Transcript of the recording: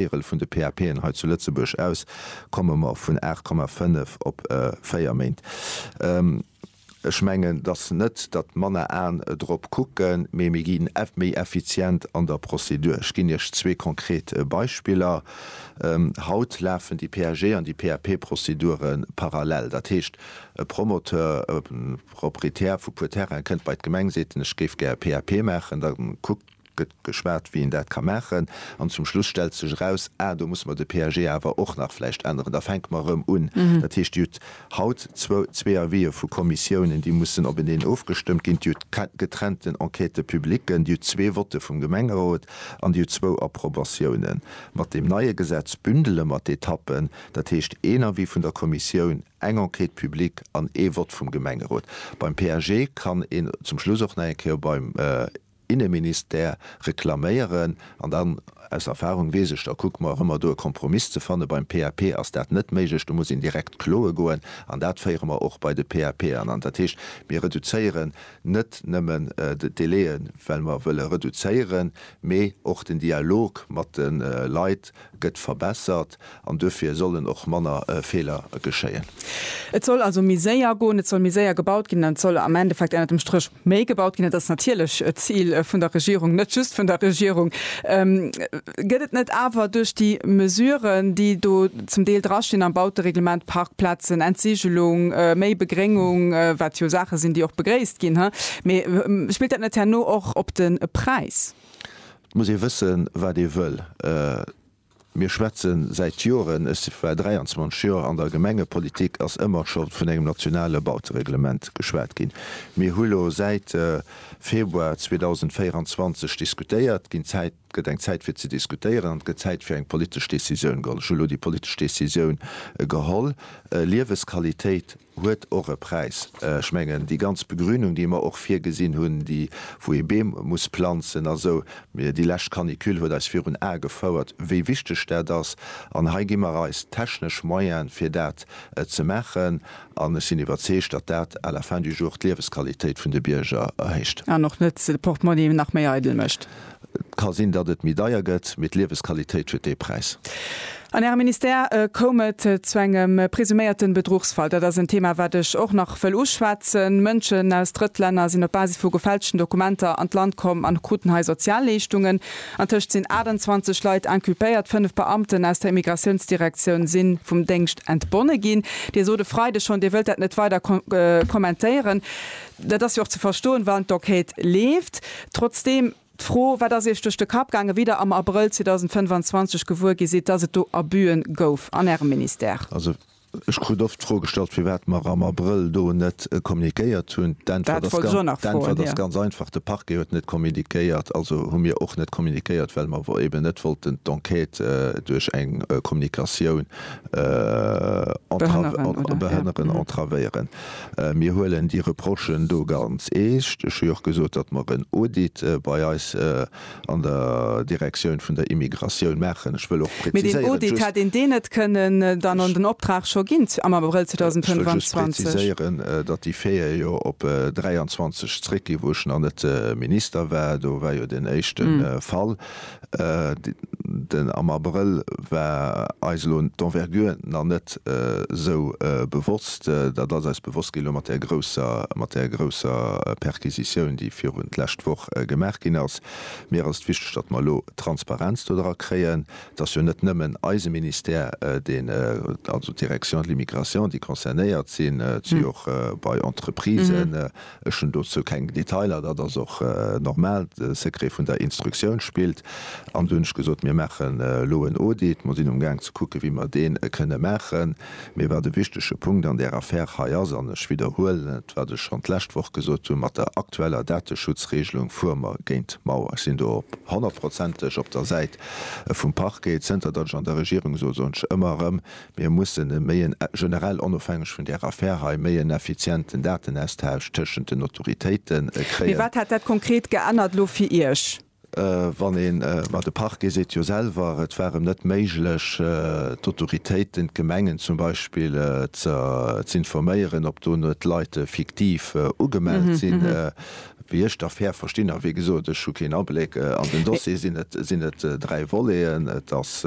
Déierel vun de PAPen hei zu Lëtzebuerg aus, komme mer vun 8,5 op 4 Méint. Ech mengen, dass net, datt manner Aen drop kucken, mee mir ginn méi effizient an der Prozedur. Ech ginn Iech zwee konkret Beispiller, Haut lafen déi PAG an déi PAP-Prozedure parallel. Dat heescht, e Promoteur, e Proprietär vu puer Terraine kënnt bei d'Gemeng, seet en, ech géif gär e PAP maachen. Da kuckt. gëtt geschwat, wéi een dat ka maachen, an zum Schluss stellt sech eraus, ah, do musse mer de PAG awer och nach vläicht änneren, da fänke mer erëm un. Dat heescht, Dir hutt haut zwou, zwee Avisë vu Kommissiounen, déi mussen openeen ofgestëmmt ginn, Dir hutt getrennten Enquête publiquen, Dir hutt zwee Votte vum Gemengerot an Dir hutt zwou Approbatiounen. Mat deem neie Gesetz bündele mer d'Etappen, dat heescht, een Avis vun der Kommissioun, eng Enquête publique an ee Vott vum Gemengerot. Beim PAG kann een zum Schluss och nach eng Kéier beim, Inneministère reklaméieren. An dann, aus Erfahrung weess ech, da kucke mer och ëmmer do e Kompromiss ze fanne. Beim PAP ass dat net méiglech, do muss een direkt kloe goen. An dat féiere mer och bei de PAP an. An dat heescht, mir reduzéieren net nëmmen d'Délaië well mer wëlle reduzéieren, mee och den Dialog mat de Leit gëtt verbessert an duerfir sollen och manner Feeler geschéien. Et soll also méi séier goen, et soll méi séier gebaut ginn an et soll am Endeffekt ënnert dem Stréch méi gebaut ginn. Dat ass natierlech d'Zil vun der Regierung, net just vun der Regierung. Gëtt et net awer duerch déi Mesuren, déi do zum Deel drastinn am Bautereglement, Parkplazen, Entsigelung, méi Begréngung, wat jo Saache sinn, déi och begréisst ginn, mee spillt dat net herno och op de Präis? Et muss ee wëssen, wat ee wëll. Mir schwätze säit Joren, ech war 23 Joer an der Gemengepolitik, ass ëmmer scho vun engem nationale Bautereglement geschwat ginn. Mir hu lo säit Februar 2024 diskutéiert, ginn Zäit, gëtt eng Zäit fir ze diskutéieren an et gëtt Zäit fir eng politesch Decisioun geholl. Ech hu lo déi politesch Decisioun geholl, Liewesqualitéit huet och e Präis. Ech mengen, déi ganz Begrünung, déi mer och virgesinn hunn, déi, wou ee Beem muss planzen a sou, déi lescht Canicule huet eis virun Ae gefouert, wéi wichteg dat ass. An hei gi mer eis d'technesch Moyene fir dat ze maachen. An ech sinn iwwerzeegt, datt dat à la fin du jour d'Liewesqualitéit vun de Bierger erhéicht. An och net de Portemonnaie nach méi eidel mécht. Et ka sinn, datt et méi deier gëtt, mee d'Liewesqualitéit huet dee Präis. An Ärem Ministère koum et zu engem presuméierte Bedruchsfall. Dat ass en Thema, wat ech och nach wëll uschwätzen. Mënschen aus Drëttlänner sinn op Basis vu gefälschten Dokumenter an d'Land komm an kruten hei Sozialleeschtungen. Antëscht sinn 28 Leit inculpéiert. Fënnef Beamten aus der Immigratiounsdirektioun si vum Déngscht entbonne ginn. Dir sot e Freideg schonn, Dir wëllt dat net weider kommentéieren. Dat ass jo och ze verstoen, wann d'Enquête leeft. Trotzdeem d'Fro, Wat ass Iech duerch de Kapp gaangen, wéi Der am Abrëll 2025 gewuer gi sidd, dass et do Abuen gouf an Ärem Ministère? Also, ech krut oft d'Fro gestallt, firwat mer am Abrëll do net kommunikéiert hunn. D'Äntwert ass ganz einfach, De Parquet huet net kommunikéiert, also hu mir och net kommunikéiert, well mer eben net wollten d'Enquête duerch eng Kommunikatioun behënneren, entravéieren. Mir huelen déi Reprochen do ganz eescht. Ech hu jo och gesot, datt mer en Audit bei eis an der Direktioun vun der Immigratioun maachen. Ech wëll och präziséieren, just. Mee deen Audit hätt een deen net kënnen dann an den Optrag scho ginn am Abrëll 2025? Ech wëll just präziséieren, datt déi Faite jo op 23 zréckgeet, wou ech nach net Minister war. Do war jo deen éischte Fall. Den am Abrëll war eis elo d'Envergure nach net esou bewosst. Dat ass eis bewosst ginn elo mat där grousser, mat där grousser Perquisitioun, déi virun d'lescht Woch gemaach ginn ass. Mir ass et wichteg, datt mer elo Transparenz do dra kréien. Et ass jo net nëmmen eise Ministère, deen, also d'Direction de l'Immigration, déi concernéiert sinn. Et si och bei Entreprisen Ech hunn dozou keng Detailer, dat ass och normal, de Secret vun der Instruktioun spillt. An du hunn ech gesot, mir maachen elo en Audit, mer sinn um Gaang ze kucken, wéi mer deen kënne maachen. Mee wat e wichtege Punkt an där Affär hei ass, an ech widderhuelen et, wat ech schonn d'lescht Woch gesot hunn, mat der aktueller Dateschutzregelung fuere mer géint d'Mauer. Ech sinn do honnertprozenteg op der Säit vum Parquet. Zënter datt ech an der Regierung soss, soen ech ëmmer erëm, Mir mussen e méi en, generell onofhängeg vun där Affär hei, méi en effizienten Datenaustausch tëschent den Autoritéite Mee kréien. wat hätt dat konkret geännert elo fir Iech? Wann een, ma de Parquet seet jo selwer, et war em net méiglech, d'Autoritéiten, d'Gemengen zum Beispill, z'informéieren, ob do net Leit fiktiv ugemellt sinn. Wéi ech d'Affär verstinn, a wéi gesot, ech hu keen Abléck an den Dossier, sinn et dräi Voleten. Et ass.